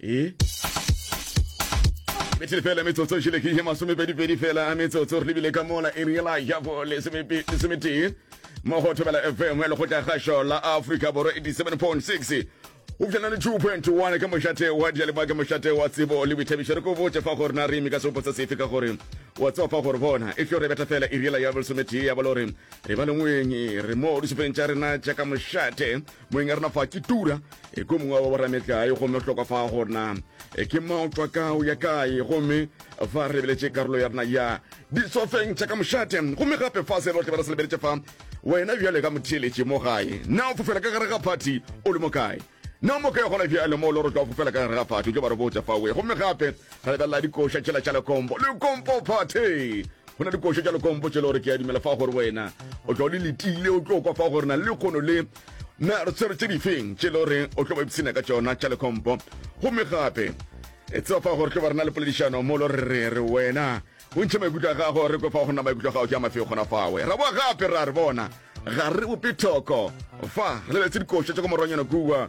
e betile fela metsotso e šile ke ye masomepedipedi fela a metsotso re lebile ka mola e riela ya bo lesometee mo go thobela fm ya lekgotla kgašo la africa borwa 87.6 o bjana le 2.1 ka mošate wa dialema ka mošate wa tsebo le boithabišo re ko botse fa gore na re eme ka sehopotsa sefe ka gore wa tsewa fa gore bona e tlo re beta fela e riela ya bo lesometee ya ba le gore re ba lengweng re mo disopeng tša rena tša ka mošate moeng a rena fa ke tura e ko mongwe wa borametlae gomme o hlokwa fa gona e ke maotswa ka o ya kae gomme fa re lebeletše karolo ya rena ya disofeng tša ka mošate gomme gape fa se lotlhe ba re se lebeletše fa wena bjale ka motheeletše mo gae na o fofela ka gare ga phathi o le mo kae na mo kae gona bjale mo lo re tlo fofela ka gare ga phathi o tlo ba re botša fa we gomme gape re lebelela dikoša tšela tša lekompo lekompo phathi go na dikoša tša lekompo tšele gore ke a dumela fa gore wena o tlo le letile o tlo kwa fa gore na le kgono le na re tshwere tse difeng tšele gore o tlo ba ipsena ka tšona tša lekompo gomme gape e tseba fa gore tlo ba re na le poledišano mo lo re re re wena o ntšhe maikutlo a gago re kwe fa go nna maikutlo a gago ke a mafeo kgona fawe ra boa gape ra re bona ga re bope thoko fa re lebetse dikoša tša go morwanyana kua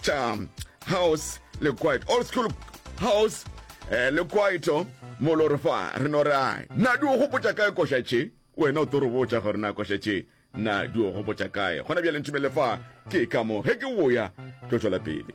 tša house le quiet old school house eh, le kwaito molo re fa re no rai na di o gopotsa kae koša tše wena o tlo re botsa gore na koša tše na di o gopotsa kae gona bjale ntumele fa ke ka mo ge ke boya tlo tswela pele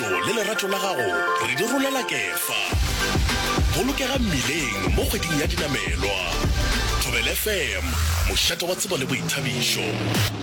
Lerato le lerato la gago re di rolela kefa. Bolokega mmileng mo kgweding ya dinamelwa. Thobela FM, mošate wa tsebo le boithabišo.